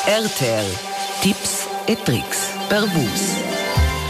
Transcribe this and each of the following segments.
RTL Tipps e Tricks per Vus.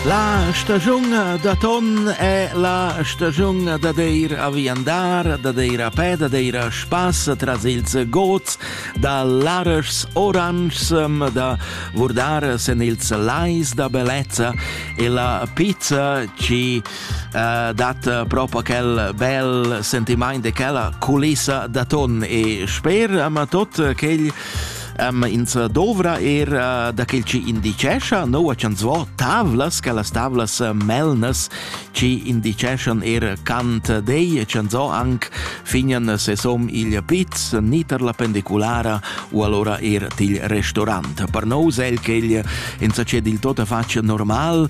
La stagiun da ton è la stagiun da deir a viandar, da deir a pe, da deir a spass tras ils gods da lareschs oranschs, da vurdar sen ils lais da bellezza e la pizza ci eh, dat eh, proprio quel bel sentiment de quella culissa da ton e sper ama tot quel um, ins dovra er uh, da quel ci indicescha no a chans vo tavlas che las tavlas eh, melnas ci indiceschan er cant dei chans vo anc finian se som il piz niter la pendiculara u allora er til restaurant per no sel quel ins acced il tota faccia normal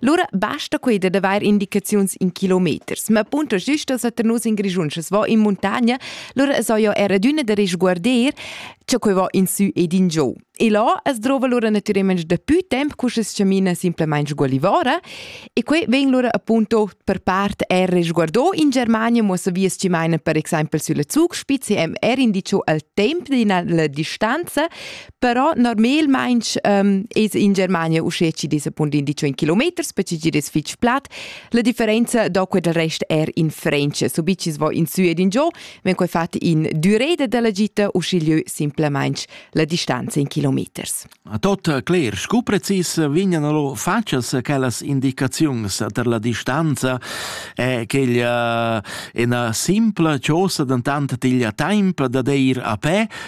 Lura basta quei da daver indicaziuns in kilometers, ma punto giusta se nus in Grischun sche va in montagna, lura so io era d'una da risguarder, che quei va in su ed in giù. E là es drova lura naturalmente da più temp cu es camina simplesmente sgualivora e quei ven lura appunto per part er risguardo in Germania, mo se vies ci meine per exempel sulla Zugspitze hem er indicio al temp d'ina la distanza Però normalmain ähm, es in Germania uschè chi desa punt in di 100 kilometers, perché chi es fich plat. La differenza da quel rest er in French. Subit vis vo in sü ed in giò, ven quai fat in düreda della gita, uschigliö simplamaing la distanza in kilometers. Tot cler, scu precis vignano lo facas quellas indicaziuns per la distanza e che illa eh, ina simpla chosa dentant tiglia temp da deir a pe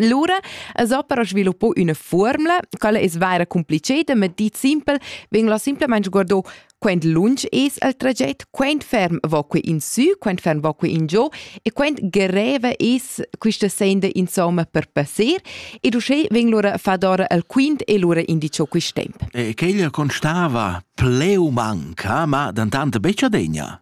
Lura es opera sviluppò üna fuormula, quella es vaira compliceda, ma dit simpel vegn la simplamaing guardò quant lunsch es il traget, quant ferm va que in sü, quant ferm va que in giò e quant greva es quista senda insomma per passer ed uschè vegn lura fadora al quint e lura indicho quist temp. E quella constava pleu manca, ma dantante betg adegna.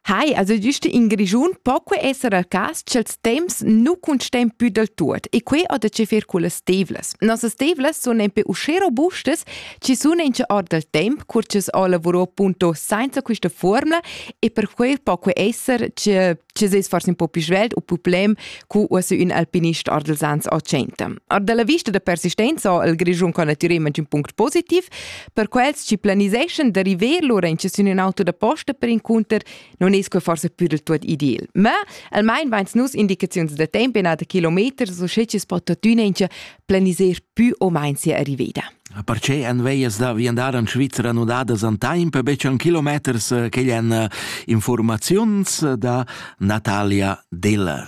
Hai, also giusto in Grischun po que esser il cas ch'els temps nu cuntstem più del tuot e que ho da che fer culle stevlas. Nossas stevlas sun empe usché robustas chi sun in or del temp cur ch'es ho lavurò appunto sainza quista formula e per quel po que esser che ci seis forse un po' più svelt o problem cu uossa ün alpinist ardelsans a centa. Ar dalla vista da persistenza ha il Grischun con natüralment ün punct positiv, per quels ci planiseschan da river lura in sün ün auto da posta per incunter non es que forse pür il tuot ideal. Ma almain vains nus indicaziuns da temp in da kilometers, so sche ci spot tuttüna in planiser pü o main sia arriveda. Perche en veias da viandar en Svizra nudadas an temp betg an kilometers eh, che en eh, informaziuns da Natalia Deller.